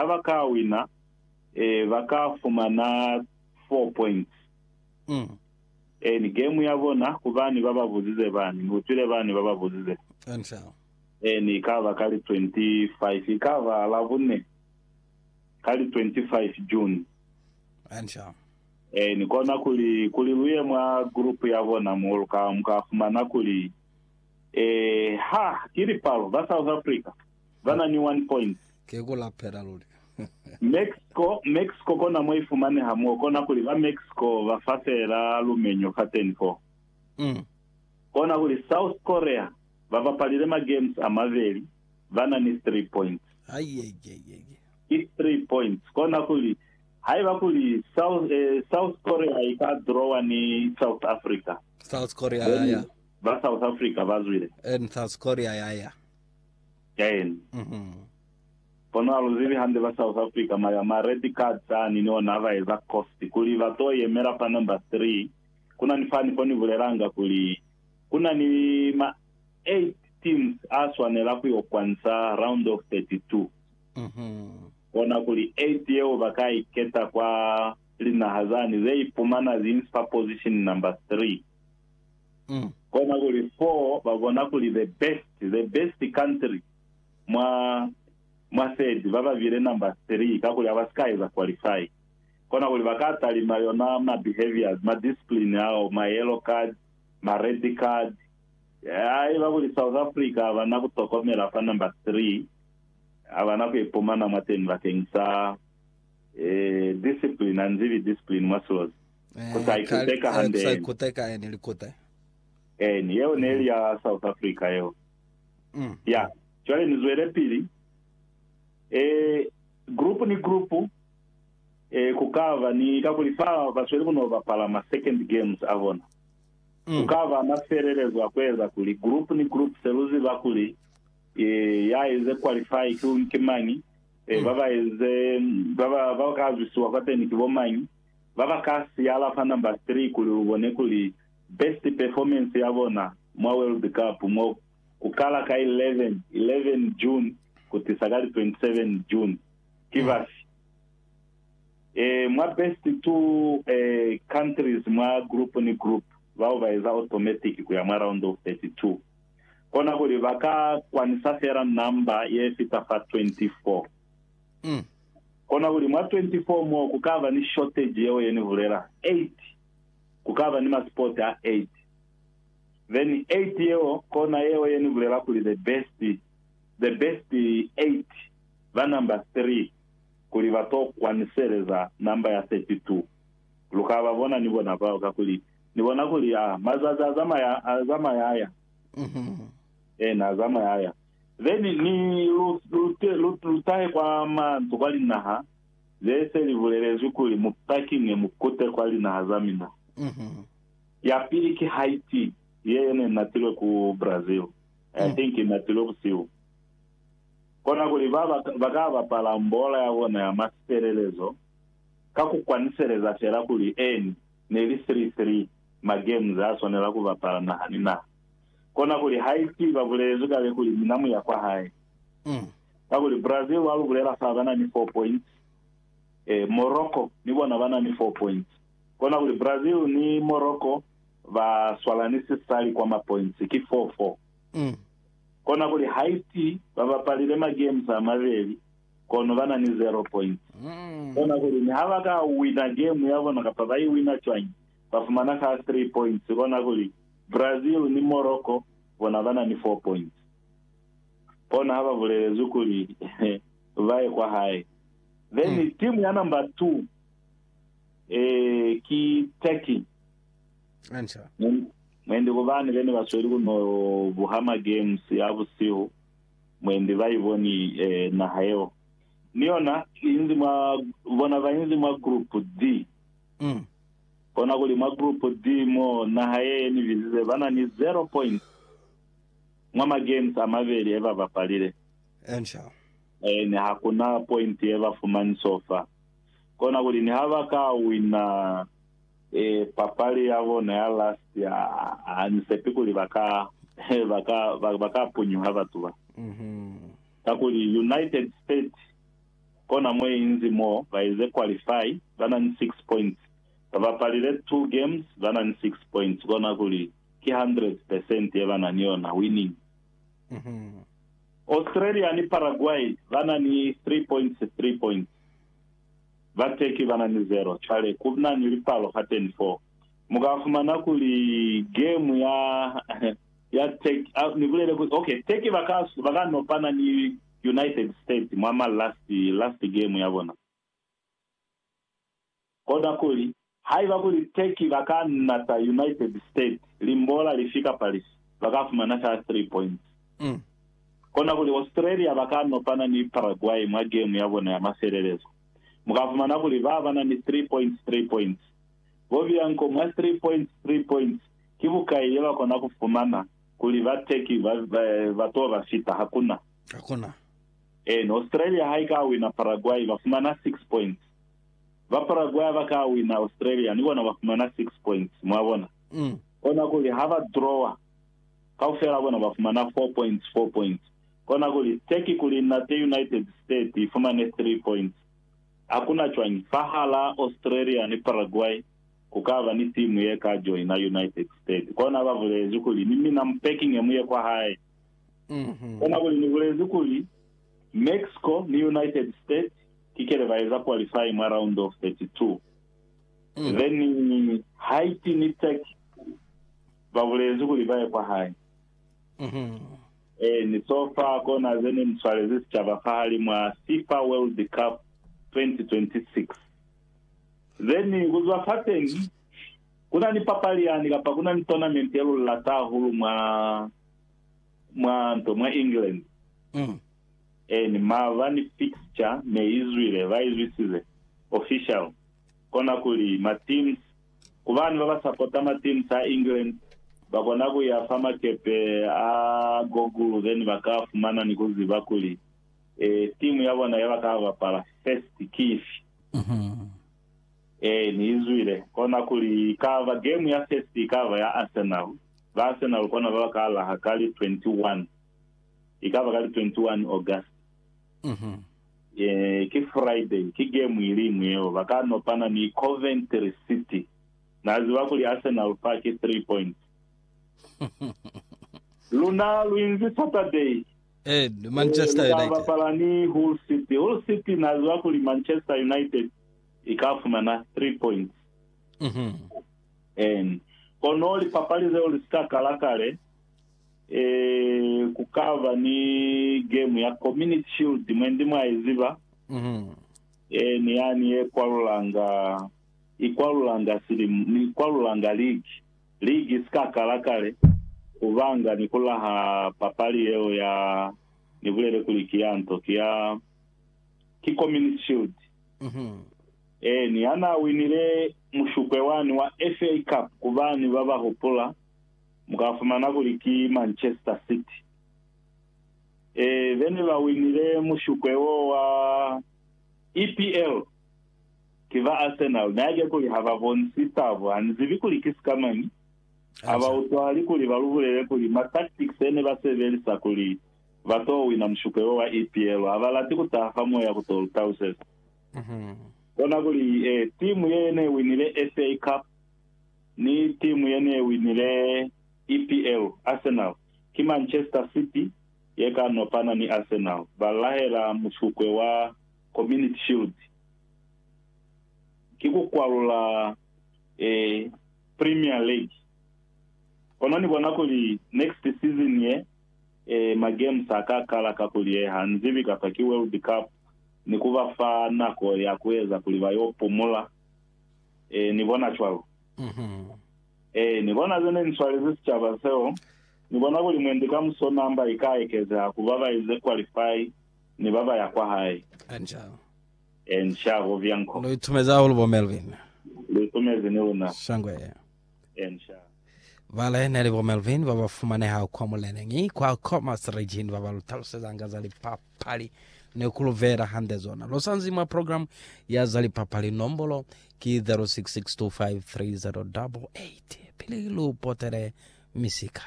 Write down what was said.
ha ba ka wina, ba ka fumana 4 points in game ya bona, ku bani ba ba buzize bani. Ni utwile bani ba ba buzize. In i ka ba ka li 25, i ka ba Labune ka li 25 June. In kona kuli, kuli lu ye mwa group ya bona mo, lu ka, mu ka fumana kuli, eh, ha, ki lipalo ba South Africa. ba na ni one point. Ki ku lapela luli. Mexico, Mexico kona mo i fumaneha mo, kona kuli ba Mexico ba fa feela lumenyo fateni fo. Mm. Kona kuli South Korea ba bapalile ma games a mabeli, ba na ni three points. Aiyaiyaiyaiya. Ki three points. Kona kuli haiba kuli South, eh, South Korea i ka drawa ni South Africa, South Korea ya then ya. ba South Africa ba zwile. And South Korea ya ya. Ten. Kono aluzibi hande ba South Africa ma ya ma red cards ani ni ona aba eza cost kuli ba to yemela fa number three. Kuna ni fani fo ni bulelanga kuli kuna ni ma eight teams a swanela ku yo kwanisa round of 32. Kona kuli eight yeo ba ka i keta kwa linaha zani ze ipumana zi nsi fa position number three. mm. Kona kuli for ba bona kuli the best the best country mwa mwa third ba ba bile number three kakuli ha ba si ka eza qualify kona kuli ba ka talima yona ma behaviors ma discipline ao ma yellow card ma red card haiba kuli South Africa ha ba na ku tokomela fa number three ha ba na ku ipumana mwateni bakeng sa eh, discipline anzibi discipline mwa silozi Ku sa ikuteka hande Ku sa eni. ikuteka eni likute. Eni, yeo neli ya South Africa yeo. Mm. Ya. Cwale ni zwelepili. Eh, group ni group, eh, ku ka ba ni, kakuli fa ba sweli ku no bapala ma second games a bona, ku Mm. ka ba na sielelezo ya ku eza kuli group ni group se lu ziba kuli, eh, ya eze qualify ki, ki mañi, eh, ba ba eze, ba ba, ba ka zwisiwa kwateni ki bo mañi. ba ba ka siyala fa number three kuli u bone kuli best performance ya bona mwa World Cup mo ku kala ka 11 11 June ku tisa ka li 27 June ki bafi? Eh, mwa best two eh, countries mwa group ni group bao ba eza automatic ku ya mwa round of 32. Kona kuli ba ka kwanisa fela number ye fita fa 24. Kona kuli mwa 24 mo ku kaba ni shortage yeo ye ni bulela, 8 ku kaba ni ma sport a 8. Then 8 yeo kona yeo ye ni bulela kuli the best, the best 8 ba number 3 kuli ba to kwaniseleza number ya 32. Lu ka ba bona ni bona bao kakuli Ni bona kuli, ah, mazazi a zamaya, a zamaya aya. Eena, a zamaya aya. Then ni lu, lu, lu, lu tahe kwa manzu kwa linaha ze se li bulelezwi kuli mu pakinge mu kute kwa linaha za mina. Ya pili ki Haiti, ye ye ne natilwe ku Brazil. I think i natilwe busihu. Kona kuli ba, ba, ba ka bapala mbola ya bona ya masielelezo ka ku kwaniseleza fela kuli, Eeni, ne li three-three ma games a swanela ku bapala naha ni naha. Kona kuli haiti babulezwi kale kuli mina muya kwahae. Kakuli Brazil wa lubulela fa bana ni four points, e, Morocco ni bona bana ni four points. Kona kuli Brazil ni Morocco ba swalani sisali kwa ma points, ki four four. Kona kuli Haiti ba bapalile ma games a mabeli kono bana ni zero points. Kona kuli ni ha ba ka wina game ya bona kapa ba i wina cwañi, ba fumana ka 3 points kona kuli Brazil ni Morocco bona ba na ni 4 points. Kona ha ba bulelezwi kuli ba ye kwa hae. Then team ya number two eh ki Turkey. Hantle. Mwendi kubani bene ba sweli ku no buha ma games a busihu mwendi ba iboni eh, naha yeo ni yona inzi mwa bona ba inzi mwa group D. Umm. Kona kuli mwa Group D mo naha ye yeni bizize ba na ni zero points mwa ma games a mabeli e ba bapalile. Ensure. Ene ha ku na point ye ba fumani sofa. Kona kuli ni ha ba ka wina eh, papali ya bona ya last ya, ha ni sepi kuli ba ka, ba ka, ba ka punyuha batu ba. Uhmm. Kakuli United States Kona mo inzi mo ba eze qualify ba na ni 6 points. Ba bapalile 2 games ba na ni 6 points kona kuli ki 100 percent ye ba na ni yona winning. Australia ni Paraguay ba na ni 3 points 3 points. Ba Turkey ba na ni 0. Cwale ku na ni lipalo hateni foo. Mu ka fumana kuli game ya ya Turkey, ni bulele kuli, okay, Turkey ba ka ba ka nopana ni United States mwa ma last last game ya bona. Koda kuli, haiba kuli Turkey ba ka nata United States limbola lifi kapa lifi, ba ka fumana fela three points. Kona kuli Australia ba ka nopana ni Paraguay mwa game ya bona ya mafelelezo. Mu ka fumana kuli ba ba na ni three points three points. Bo Bianco mwa three points three points ki bukai ye ba kona ku fumana kuli bateki ba, ba, ba to ba fita. Hakuna. Hakuna. Eeni, Australia ha i ka wina Paraguay, ba fumana 6 points. Ba Paraguay ha ba ka wina Australia, ni bona ba fumana 6 points. Mwa bona? Mm. Kona kuli ha ba drawa, kaufela bona ba fumana 4 points, 4 points. Kona kuli Turkey kuli nate United States i fumane 3 points. Hakuna cwañi, fahalaa Australia ni Paraguay, ku ka ba ni timu ye ka joina United States. Kona ba bulezi kuli, Ni mina mu pekinge mu ye kwa hae. Kona kuli ni bulezi kuli, Mexico ni United States ki kele ba eza qualifying mwa round of 32. Then Haiti ni Turkey ba bulezi kuli ba ye kwa hae. Eeni, so far kona ze ne ni swalezi sicaba fahalimw'a FIFA World Cup 2026. Then kuzwa fateni kuna ni papali yani kapa kuna ni tournament ye lulilata hahulu mwa mwa nto mwa England Mm. and mava ni fixture ne izwile ba izwisize official kona kuli ma teams kubani baba supporta ma teams a England bakona kuya fa makepe a Google then baka fumana ni kuziba kuli Eh, timu ya bona ya baka bapala first ki ifi? Eh, ni izwile. Kona kuli ikaba game ya first ikaba ya Arsenal. Ba Arsenal kona ba baka laha ka li 21. Ikaba ka li 21 August. Eh, ki Friday, ki game iliñwi yeo. Baka nopana ni Coventry City. Na ziba kuli Arsenal fa ki 3 points. Luna lu inzi Saturday. Ee, Manchester United. Ee, ni ka bapala ni Hull City. Hull City na ziba kuli Manchester United i ka fumana 3 points. Ee, kono lipapali zeo li si ka kala kale. Ee, ku ka ba ni game ya Community Shield, mwendi mwa i ziba. Ee, ni yani ye kwalulanga, i kwalulanga silimu, ni kwalulanga ligi. Ligi si ka kala kale ku banga ni ku laha papali yeo ya ni bulele kuli ki ya nto, ki ya, ki Communist Shield. Eeni, ha na winile mushupwe wani wa FA Cup, ku bani ba ba hupula, mu ka fumana kuli ki Manchester City. Ee, be ne ba winile mushupwe woo wa EPL. Ki ba Arsenal, na yake kuli ha ba bonisi tabu, ha ni zibi kuli ki sika mañi. Ha ba utwahali kuli ba lu bulele kuli ma tactics e ne ba sebelisa kuli ba to wina mushuko yo wa EPL, ha ba lati ku taha fa moya ku to lu tauseza. Kona kuli, e, timu ye ne winile FA Cup ni timu ye ne winile EPL, Arsenal, ki Manchester City ye ka nopana ni Arsenal, ba lahela mushuko wa. Community Shield ki ku kwalula e Premier League. Kono ni bona kuli next season ye, e ma games a ka kala ka ku lieha, nzibi kapa ki World Cup, ni ku ba fa nako ya ku eza kuli ba yo pumula. E ni bona cwalo. E ni bona ze ne ni swalezi sicaba seo. Ni bona kuli mwendi kamuso number i ka ekezeha ku ba ba ize qualify. ni baba ya kwa hae. Enca. Enca, bo Bianco. Lu itumezi hahulu bo Melvin. Lu itumezi ni luna. Shangwe. Enca. Bale, neli bo Melvin baba fumaneha kwa muleneñi kwa Commerce Region baba lu talusezanga za lipapali ni ku lu veela hande zona. Lu sanzi mwa program ya za lipapali, nombolo ki 0662530088 pili lu potele misika.